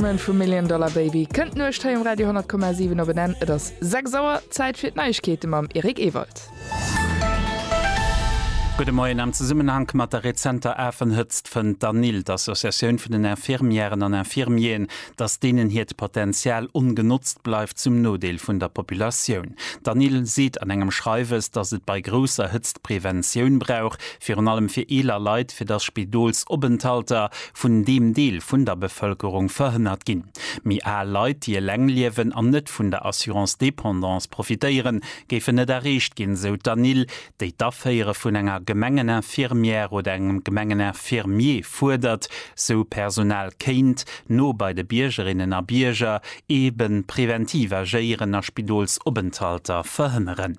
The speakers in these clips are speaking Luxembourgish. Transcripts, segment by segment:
Batman vum Million Dollar Baby kënnt d'Nuecht hei um Radio 10,7 op en Enn. Et ass 6 Auer, Zäit fir d'Neiegkeete mam Eric Ewald. Gudde Moien. Am Zesummenhank mat der rezenter Afenhëtzt fënnt d'ANIL, d'Associatioun vun den Infirmièren an Infirmieren, datt deenen hiert Potenzial ongenotzt bleift, zum Nodeel vun der Populatioun. D'ANIL seet an engem Schreiwes, datt et bei grousser Hëtzt Preventioun brauch, virun allem fir eeler Leit, fir datt Spidolsopenthalter, vun deem Deel vun der Bevëlkerung verhënnert ginn. Méi al Leit, déi eleng liewen an net vun der Assurance dépendance profitéieren, géifen net erreecht ginn, sou d'Anil, déi d'Aféiere vun enger Gemengeninfirmière oder engem Gemengeninfirmier fuerdert, sou Personal kéint no bei de Biergerinnen a Bierger eeben preventiv agéieren a Spidolsopenthalter verhënneren.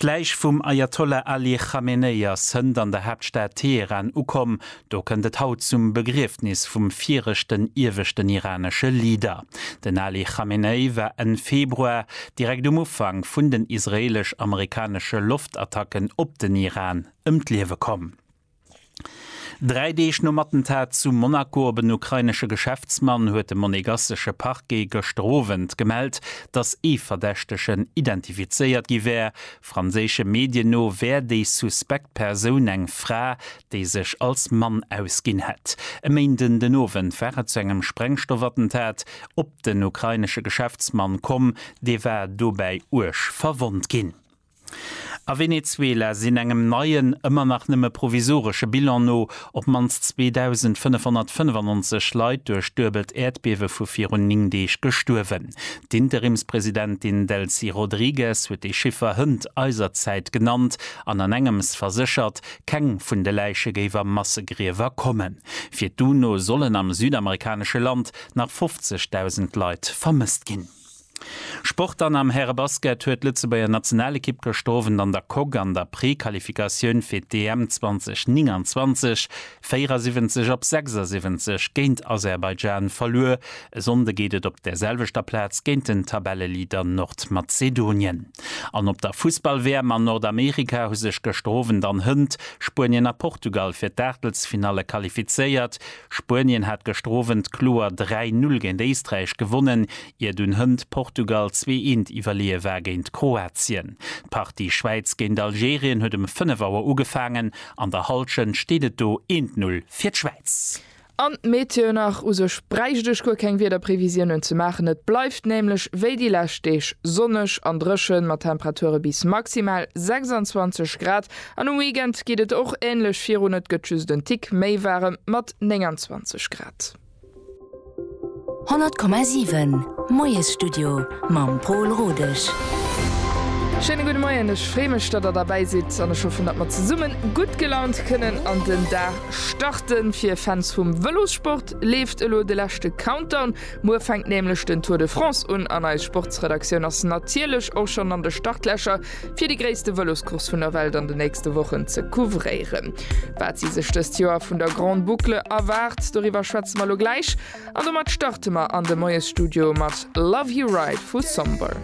D'Läich vum Ajatollah Ali Chamenei ass hënt an der Haaptstad Teheran ukomm. Do kënnt et haut zum Begriefnis vum viregten ieweschten iranesche Leader. Den Ali Chamenei war Enn Februar, direkt um Ufank vun den israeelesch-amerikanesche Loftattacken op den Iran, ëm d'Liewe komm. Dräi Deeg nom Attentat zu Monaco op en ukrainesche Geschäftsmann huet de monegassesche Parquet gëschter Owend gemellt, datt ee Verdächtegen identifizéiert gi wär. Franséische Medien no wär déi suspekt Persoun eng Fra, déi sech als Mann ausginn hätt. E Méinden den Owend war et zu engem Sprengstoffattentat op den ukrainesche Geschäftsmann komm, dee war dobäi uerg verwonnt ginn. A Venezuela sinn engem neien, ëmmer nach nëmme provisoresche Bilan no, op d'mannst 2.595 Leit duerch d'duebelt Äerdbiewe vu virun 9 Deeg gestuerwen. D'Interimspresidentin Delcy Rodrigues huet déi Chiffer hënt eiser Zäit genannt an an engems verséchert, keng vun de Läiche géif a Massegriewer kommen. Fir d'UNO sollen am südamerikanesche Land nach 50.000 Leit vermësst ginn. Sport Dann am Härebasket huet d'Lëtzebuerger Nationalekipp gëschter Owend an der Coque an der Prequalifikatioun fir d'EM 2029 74 op 76 géint Aserbaidschan verluer. E Sonnde geet et op der selwechter Plaz géint den Tabelleleader Nordmazedonien. An op der Fussball-WM an Nordamerika hu sech gëschter Owend an Hënt Spuenien a Portugal fir d'Aachtelsfinalle qualifizéiert. Spuenien hat gëschter Owend kloer 3, 0 géint Éisträich gewonnen, Ier dunn hënt Portugal zwee eent iwwerleeë war géint Kroatien. D'Partie Schwäiz géint Algerien huet ëm 5 Auer ugefaangen. An der Hallschent steet et do 1 Null fir d'Schwäiz. An d'Meteo nach, U sech bräicht ech guer keng Wiederprevisiounen ze maachen. Et bleift nämlech wéi déi lescht Deeg sonneg an dréchen, mat Temperature bis maximal 26 Grad. An um Weekend geet et och änlech virun, et gëtt just en Tick méi waarem mat 29 Grad. 100,7 Moiesstudio mam Pol Rodesch. Schéine gudde Moien, ech freeë mech, datt der derbäi sidd an ech hoffen, datt mer zesumme gutt gelaunt kënnen an den Dag starten. Fir Fans vum Vëlossport leeft elo de leschte Countdown. Muer fänkt nämlech den Tour de France un an eis Sportsredaktioun ass natierlech och schonn an de Startlächer. fir déi gréisste Vëloscourse vun der Welt an de nächste Wochen ze couvréieren. Wat si sech dëst Joer vun der Grande Boucle erwaart, doriwwer schwätze mer elo gläich. An domat starte mer an de Moiesstudio mat Love You Right vu Somber.